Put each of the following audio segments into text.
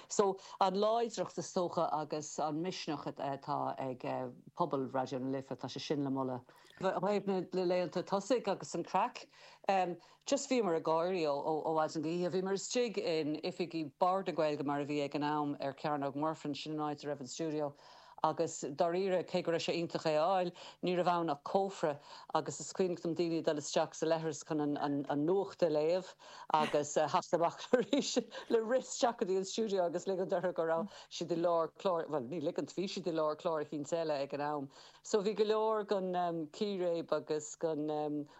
So, an láidreacht is dócha agus an misneach atá ag pobal Raidió na Life, tá sé sin le moladh. I dtaobh na laethanta tosaigh agus an craic, just bhíomar ag gáirí ó mhaidin go hoíche. Bhíomar istigh in oifigí Bhord na Gaeilge mar a bhí ag an am ar Chearnóg Mhuirfean, sin an áit a raibh an stiúideo, Agus, dáiríre, cé go raibh sé iontach é a fháil, ní raibh ann ach cófra, agus is cuimhneach dom daoine ag dul isteach sa leithreas chun an nuacht a léamh agus a theacht amach arís le rith isteach go dtí an stiúideo agus ligint orthu go raibh siad i lár cláir, bhuel, ní ligint, bhí siad i lár cláir eicínt eile ag an am. So bhí go leor den chíréib agus den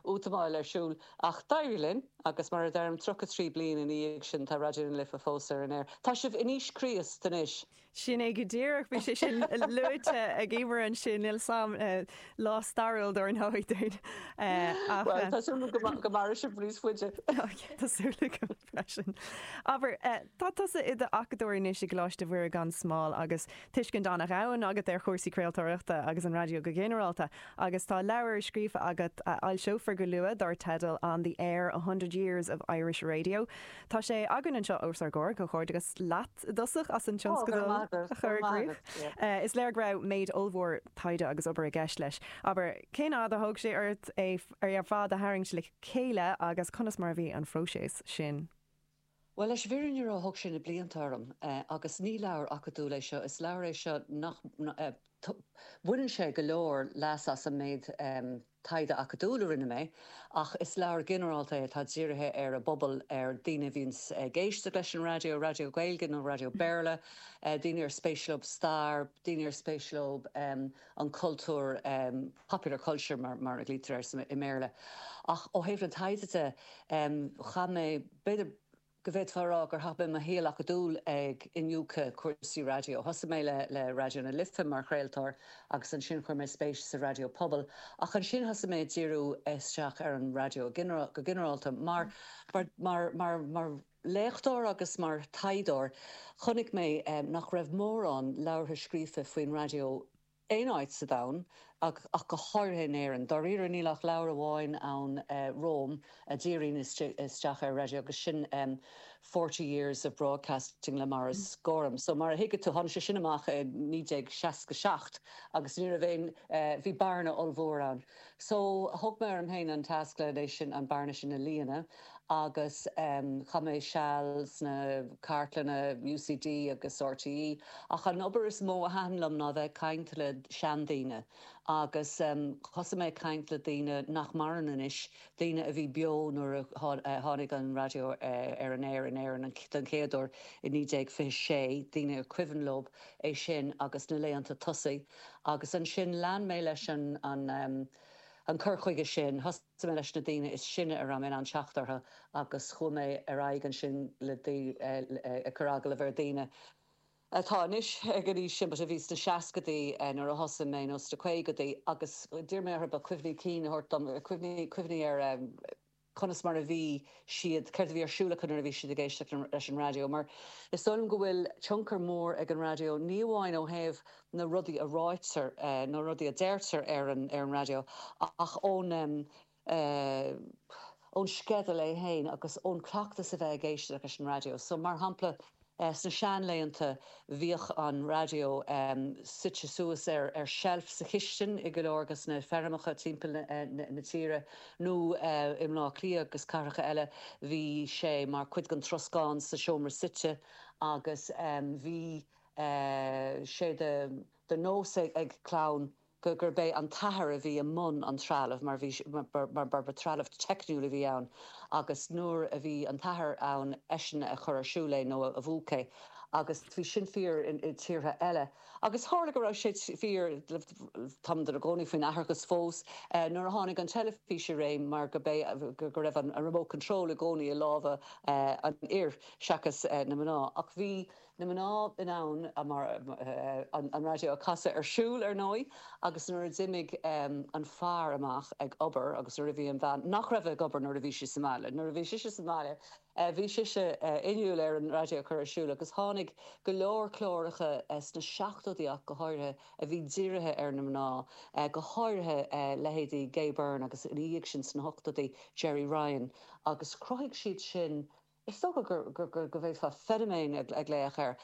útamáil ar siúl, ach d'éirigh linn, agus mar a deirim, 33 bliain ina dhiaidh sin, tá Raidió na Life fós ar an aer. Tá sibh in aois Chríost anois! Sin é go díreach, bhí sé sin luaite ag Emer ansin, an-lá stairiúil dar ndóigh dúinn. Bhuel, tá súil agam go mairfidh sibh níos faide. Tá súil agam freisin. Abair, tá tusa i d'acadóir anois i gColáiste Mhuire gan Smál agus tuiscint an-domhain agat ar chúrsaí craoltóireachta agus an raidió go ginearálta, agus tá leabhar scríofa agat a fhoilseofar go luath dar teideal On the Air, A Hundred Years of Irish Radio. Tá sé againn anseo os ár gcomhair. Comhghairdeachas leat i dtosach as an tionscadal a chur i gcrích. Is léir go raibh méid ollmhór taighde agus obair i gceist leis. Abair, cén fhad a thóg sé ort é ar fad a tharraingt le chéile agus conas mar a bhí an phróiseas sin? Bhuel, leis an bhfirinne a rá, thóg sé na blianta orm. Agus ní leabhar acadúil é seo, is leabhar é seo nach mbaineann sé go leor leas as an méid. taighde acadúil a rinne mé, ach is leabhar ginearálta é atá dírithe ar an bpobal, ar dhaoine a bhíonns ag éisteacht leis an raidió, raidió Gaeilge nó raidió Béarla, daoine ar spéis leo stair, daoine ar spéis leo an cultúr, popular culture mar a ghlaoitear air i mBéarla. Ach ó thaobh na taighde de, chaith mé b'fhéidir. go bhféadfá a rá gur chaith mé mo shaol acadúil ag iniúchadh cúrsaí raidió. Thosaigh mé le Raidió na Life mar chraoltóir agus ansin chuir mé spéis sa raidió pobail, ach ansin thosaigh mé ag díriú isteach ar an raidió go ginearálta. Mar, mar léachtóir agus mar thaighdeoir, chonaic mé nach raibh mórán leabhartha scríofa faoin raidió aon áit sa domhan, ach go háirithe in Éirinn. Dáiríre, níl ach leabhar amháin ann romham a dhíríonn isteach ar an raidió agus sin Forty Years of Broadcasting le Maurice Gorham. So, mar a thuigfidh tú, tháinig sé sin amach i 1967 agus ní raibh aon, bhí bearna ollmhór ann. So, thóg mé orm féin an tasc le, leis sin, an bearna sin a líonadh. agus chaith mé seal sna cartlanna UCD agus RTÉ ach an obair is mó a thaitin liom ná a bheith ag caint le seandaoine agus thosaigh mé ag caint le daoine nach maireann anois, daoine a bhí beo nuair a tháinig an raidió ar an aer in Éirinn den chéad uair i naoi déag fiche sé, daoine ar cuimhin leo é sin agus na laethanta tosaigh agus ansin lean mé leis an cur chuige sin. D'fhan mé leis na daoine is sine a raibh mé in ann teacht orthu agus chuaigh mé ar aghaidh ansin ag cur agallamh ar dhaoine atá anois ag an aois sin but a bhí sna seascaidí nuair a thosaigh mé nó sna caogaidí agus d'iarr mé orthu cuimhní cinn a thabhairt dom, cuimhní ar conas mar a bhí siad, céard a bhí ar siúl acu nuair a bhí siad ag éisteacht leis an raidió mar is dóigh liom go bhfuil tionchar mór ag an raidió ní amháin ó thaobh na rudaí a ráitear, na rudaí a deirtear ar an raidió ach ón ón sceideal é féin agus ón cleachtas a bheith ag éisteacht leis an raidió. So, mar shampla, sna sean-laethanta bhíodh an raidió suite suas ar ar sheilf sa chistin i go leor de na feirmeacha timpeall na tíre nó i mBlá Cliath agus cathracha eile bhí sé mar chuid den troscán sa seomra suite agus bhí sé de nós ag clann gurb é an t-athair a bhí i mbun an trealaimh mar bhí mar ba trealamh teicniúil a bhí ann agus nuair a bhí an t-athair ann eisean a chuir ar siúl é nó a mhúch é agus bhí sin fíor i tíortha eile agus tharla go raibh sé fíor tá muid inár gcónaí faoin atharthacht fós nuair a tháinig an teilifís i réim mar gurb é go raibh an remote control i gcónaí i lámha an fhir seachas na mná ach bhí na mná in ann an raidió a chasadh ar siúl, ar ndóigh, agus nuair a d'imigh an fear amach ag obair agus nuair a bhí an bhean, nach raibh ag obair nuair a bhí sí sa mbaile, nuair a bhí sise sa mbaile, bhí sise inniúil ar an raidió a chur ar siúl agus tháinig go leor cláracha sna seachtóidí ach go háirithe a bhí dírithe ar na mná, go háirithe leithéidí Gay Byrne agus ina dhiaidh sin sna hochtóidí, Gerry Ryan. agus chruthaigh siad sin, is dócha go bhféadfá feiniméan a ghlaoch air.